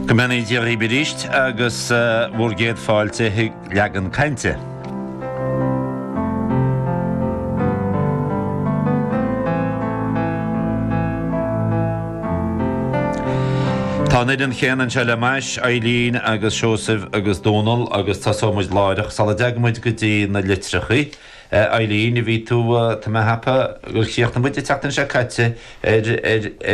Go mbeannaí Dia dhaoib aríst agus bhur gcéad fáilte chuig Leagan Cainte. Tá an fhoireann chéanna anseo le m'ais, Eibhlín agus Seosamh agus Dónal agus tosóidh muid láithreach sula dteagann muid go dtí na litreacha. A Eibhlín, a bhí tú, tá mé ag ceapadh gur chríochnaigh muid an tseachtain seo caite ar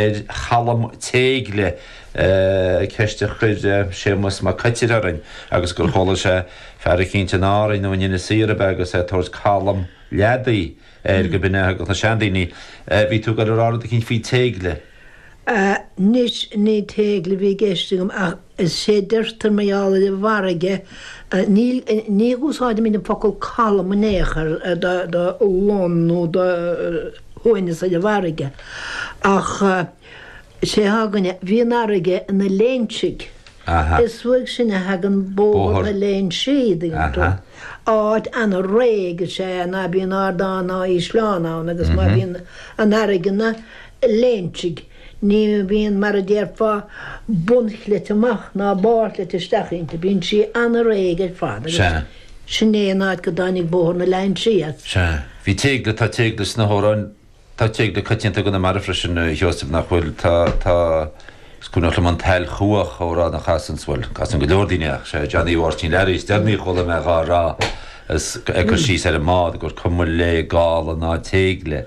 ar chalm téigle, ceist a chuir Séamas Mac Coitir orainn agus gur chuala sé fear eicínt in Árainn nó in Inis Oírr ab ea agus é ag tabhairt calm leadaí air go b'in é a thugadh na seandaoine. Bhí tú ag gabháil ag rá rud eicínt faoi téigle. Anois ní téigle a bhí i gceist agam ach is é a deirtear mar gheall ar an bhfarraige. Ní úsáidimid an focal calm in aon chor do long nó do shuaimhneas ar an bhfarraige ach is é atá againne. Bhí an fharraige ina léinsigh. Is uaidh sin a thagann Bóthar na Léinsí an dtuigeann tú. Áit an-réidh is ea é ná bíonn ardán ná ísleán ann agus má bhíonn an fharraige ina. léinsigh. Ní bhíonn, mar a déarfá, bunchleite amach ná barrchleite isteach inti. Bíonn sí an-réidh ar fad agus Sea. sin é an áit go dtáinig Bóthar na Léinsí as. Sea. Bhí téigle, tá téigle sna hamhráin, tá téigle coitianta i gConamara freisin, a Sheosaimh, nach bhfuil? Tá, tá, is cuimhneach liom An tSail Chuach, amhrán a chasanns, bhuel, casann go leor daoine ach sé Johnny Mháirtín Learaí is deireanaí a chuala mé dhá rá, is ag cur síos ar an mbád, gur cuma léi gála ná téigle.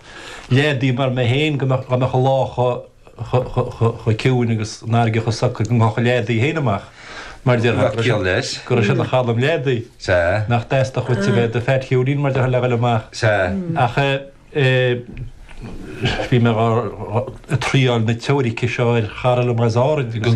leadaí mar mé féin go mbeadh an lá chomh ciúin agus an fharraige chomh socair go ngabhfadh an leadaí féin amach mar déarfá go raibh sé ina chalm leadaí. Nach dteastódh uait a bheith i do Phat Cheoinín mar déarfá le dhoil amach. Ach bhí mé ag triail na teoirice seo ar chara liom as Árainn agus